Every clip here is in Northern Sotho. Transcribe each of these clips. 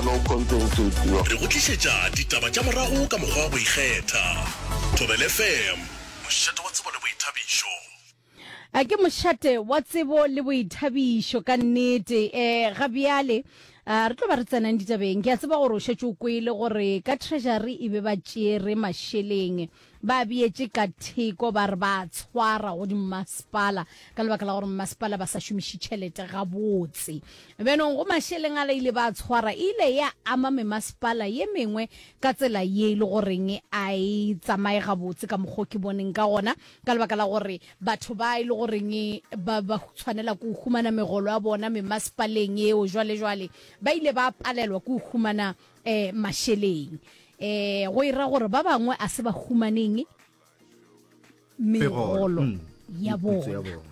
No content to your. Re go tlišetša ditaba tša morago ka mokgwa wa go ikgetha. Thobel FM, mošate wa tsebo le boithabišo. A ke mošate wa tsebo le boithabišo ka nnete. Eh, ga bjale a re tlo ba re tsenang ditabeng. Ke a tseba gore o šetše o kwele gore ka treasury e be ba tšere mašeleng. Ba beetše ka theko ba re ba a tshwara go dimmasepala ka lebaka la gore mmasepala ba sa šomiše tšhelete gabotse. Bjanong go mašeleng a la ile ba a tshwara e ile ya ama memasepala ye mengwe ka tsela ye e le goreng a e tsamaye gabotse ka mokgwa o ke boneng ka gona ka lebaka la gore batho ba e le goreng ba ba tshwanela ke go humana megolo ya bona memasepaleng eo jwale jwale ba ile ba palelwa ke go humana e, mašeleng e, go e ra gore ba bangwe a se ba humaneng megolo mm, ya bona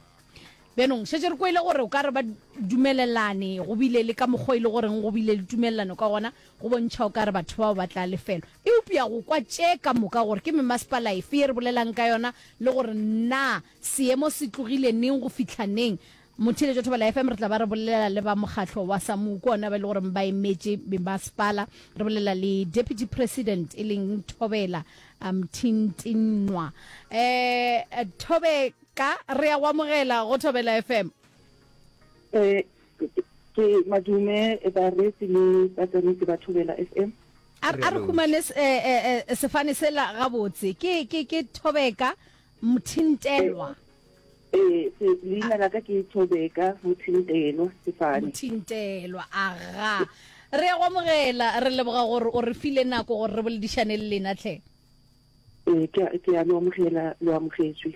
bjanong šetse re kwele gore o ka re ba dumelelane go bile le ka mokgwa e le goreng go bile le tumelelano ka gona go bontšha o ka re batho bao ba tla lefelo eupša go kwa tše ka moka gore ke memasepala efe ye re bolelang ka yona le gore na seemo se tlogile neng go fitlha neng Motheeletšo Thobela FM re tla ba re bolelela le ba mokgatlo wa SAMWU ke ona ba e le goreng ba emetše Mmasepala. Re bolelela le Deputy President e leng Thobela Mthintinqwa. Um Thobeka re a go amogela go Thobela FM. Um ke madume bareetsi le batsamaisi ba Thobela FM. A re humane sefane sela gabotse. Ke Thobeka. Mothintelwa. Ee, se, leina la ka ke Thobeka Mothintelwa Sefane. Mothintelwa, aga. Re a go amogela, re leboga gore o re file nako gore re boledišane le lena, tlhe. Ee, ke a, ke a lo amogela, lo amogetšwe.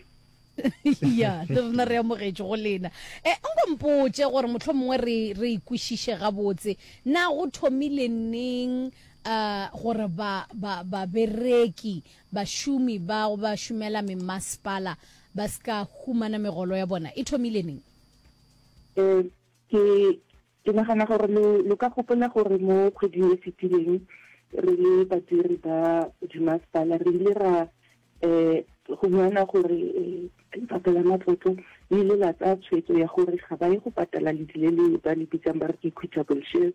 Ya, le rena re amogetšwe go lena. E, nko mpotše gore mohlomongwe re, re e kwešiše gabotse, na go thomile neng, uh, gore ba, ba, babereki Bašomi bao ba šomela memasepala ba se ka humana megolo ya bona e thomile neng? Ee, ke, ke nagana gore lo, lo ka gopola gore mo kgweding e fetileng, re le badiri ba dimasepala, re ile ra um humana gore um Lefapha la Matlotlo le ile la tsaya tshwetso ya gore ga ba ye go patala ledi le le ba le bitsang ba re ke equitable shares,